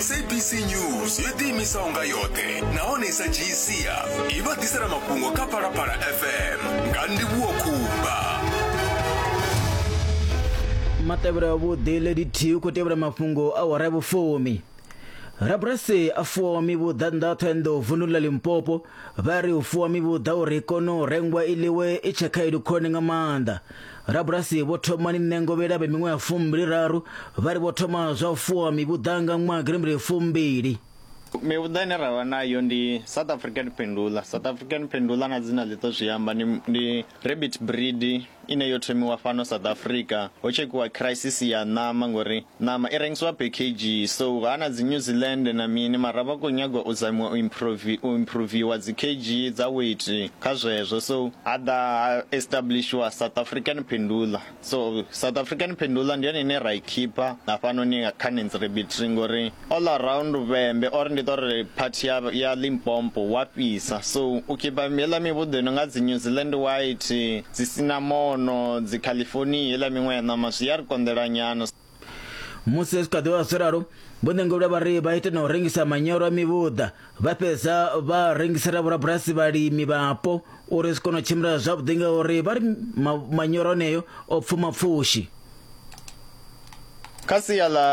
sabc news yo ḓiimisa unga yoṱhe nahone i sa dzhiyi sia i vha ḓisela mafhungo kha phalaphala fm nga ndivhuwo khumba matevhelo avhuḓi lady t u khou tevhela mafhungo a wara ya vhufumi rabulasi a fuwaho mivhuḓa nnḓa ṱhoenḓou vunḓuni ḽa limpopo vha ri u fuwa mivhuḓa uri i kone u rengwa i ḽiwe i tshe khaedu khulwane nga maanḓa Rabulasi vho Thomani Ṋengovhela vhe miṅwaha fumbili-raru vha ri vho thoma zwa u fuwa mivhuḓa nga ṅwaha girimbili fumbili. Mivhuḓa ine ra vha nayo ndi South African Pendula. South African Pendula na dzina ḽi ḓo zwi amba ndi, ndi rabbit breed ine yo thomiwa fhano South Africa ho tshekhiwa crisis ya ṋama ngori Ṋama i rengiswa phekhedzhi so ha na dzi New Zealand na mini mara vha kho nyaga u zamiwa u improve u improviwa dzi kg dza weight kha zwezwo so ha ḓa ha establishiwa South African Pendula so South African Pendula ndi yone ine ra i khipha hafhanoni kha Nance Rabbitry ngori all around luvhembe or ndi ṱori part ya ya Limpopo wa fhisa so u khipa hela mivhuḓo ino nga dzi New Zealand white dzi sinamono dzi California hela miṅwe ya ṋama zwi ya ri konḓela nyana Musi zwi kha ḓi vha zwo ralo, vho Ṋengulule vha ri vha ite na u rengisa manyoro a mivhuḓa vha fhedza vha rengisela vhorabulasi vhalimi vhapo uri zwi kone u tshimbila zwavhuḓi ngauri vha ri manyoro aneyo o pfuma pfushi kha sia ḽa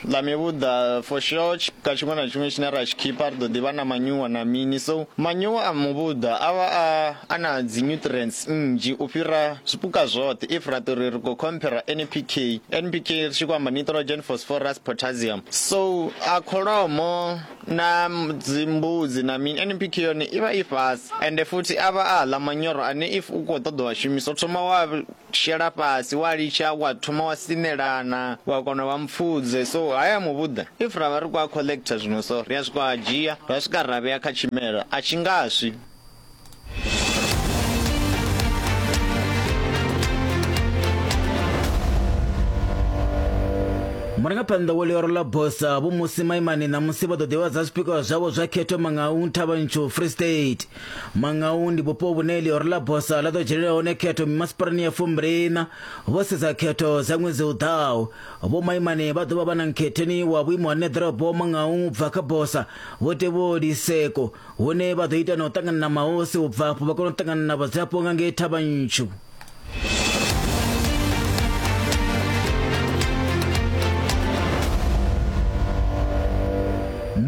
ḽa mivhuḓa for sure ka tshiṅwe na tshiṅwe tshine ra tshi khipha ri ḓo ḓivha na manyuwa na mini so manyuwa a muvhuḓa a vha a a na dzi nutrients nnzhi u fhira zwipuka zwoṱhe if ra ṱori ri khou compare npk npk ri tshi khou amba nitrogen phosphorus potassium so a kholomo na dzimbudzi na mini NPK yone i vha i fhasi ende futhi a vha a ḽa manyoro ane if u khou ṱoḓa wa shumisa u thoma wa shela fhasi wa litsha wa thoma wa sinelana wa kona u vha mupfudze so haya muvhuḓa if ra vha ri khou a collector zwino so ri a swika a dzhia ra swika ra vhea kha tshimela a tshi nga swi. murangaphanḓa wo ḽioro ḽa bosa vho musi maimani ṋamusi vha ḓo ḓivhadza zwipikwa zwavho zwa khetho mangau nthavhantsho free state mangau ndi vhupo vhune ḽioro ḽa bosa ḽa ḓo dzhenelela hone khetho mimasipalani ya fumbiliṋa vho sedza khetho dza ṅwedzi u ḓaho vho maimani vha ḓovha vha na nkhetheni wa vhuimo ha neḓorobo mangau bva kha bosa vho tevholi seko hune vha ḓo ita na u ṱangana na mahosi u bva afho vha kona u ṱangana na vhadzulapo nga ngei thavha ntshu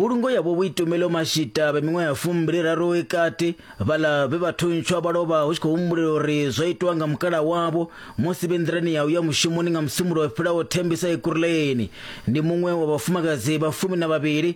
mbulungo yavho vho itumelo mashita vha miṅwe ya fumbili raro i kati vhala vhe vha thuntswa vha lovha hu tshi khou humbulela uri zwo itwa nga mukala wavho musi vhe nḓirani ya uya mushumoni nga musumulo fhilaho thembisa ekuruleni ndi muṅwe wa vhafumakadzi vha fumi na vhavhili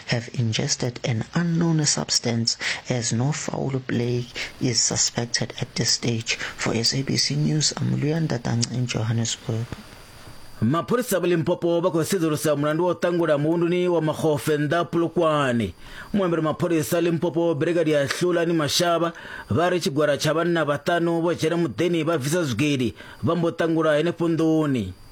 have ingested an unknown substance as no foul play is suspected at this stage. For SABC News, I'm Luyan Datang in Johannesburg. mapholisa va limpopo va khou sedzulusa mulandu wa u ṱangula muvhunduni wa makgofe nnḓa pulukwani muambeli mapholisa limpopo brigadi ya hlulani mashavha vha ri tshigwada tsha vhanna vhaṱanu vho dzhena muḓeni vha bvisa zwigidi vha mbo ṱangula henefho nḓuni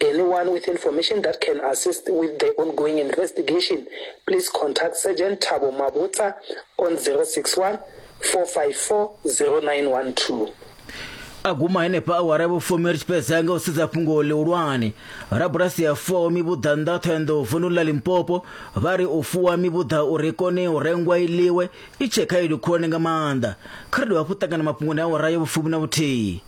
Anyone with information that can assist with the ongoing investigation, please contact Sergeant Thabo Mabotsa on 061 454 0912. a guma henefha awara vhufumi ri tshi fhedza nga u sedza fhungo ḽihulwane rabulasi ya fuwaho mivhuḓa nnḓa thohoyanḓou vundu ḽa limpopo vha ri u fuwa mivhuḓa uri i kone u rengwa i ḽiwe i tshee khaedu khulwane nga maanḓa kha ri dovha hafhu ṱangana mafhungoni awara ya vhufumi na vhuthihi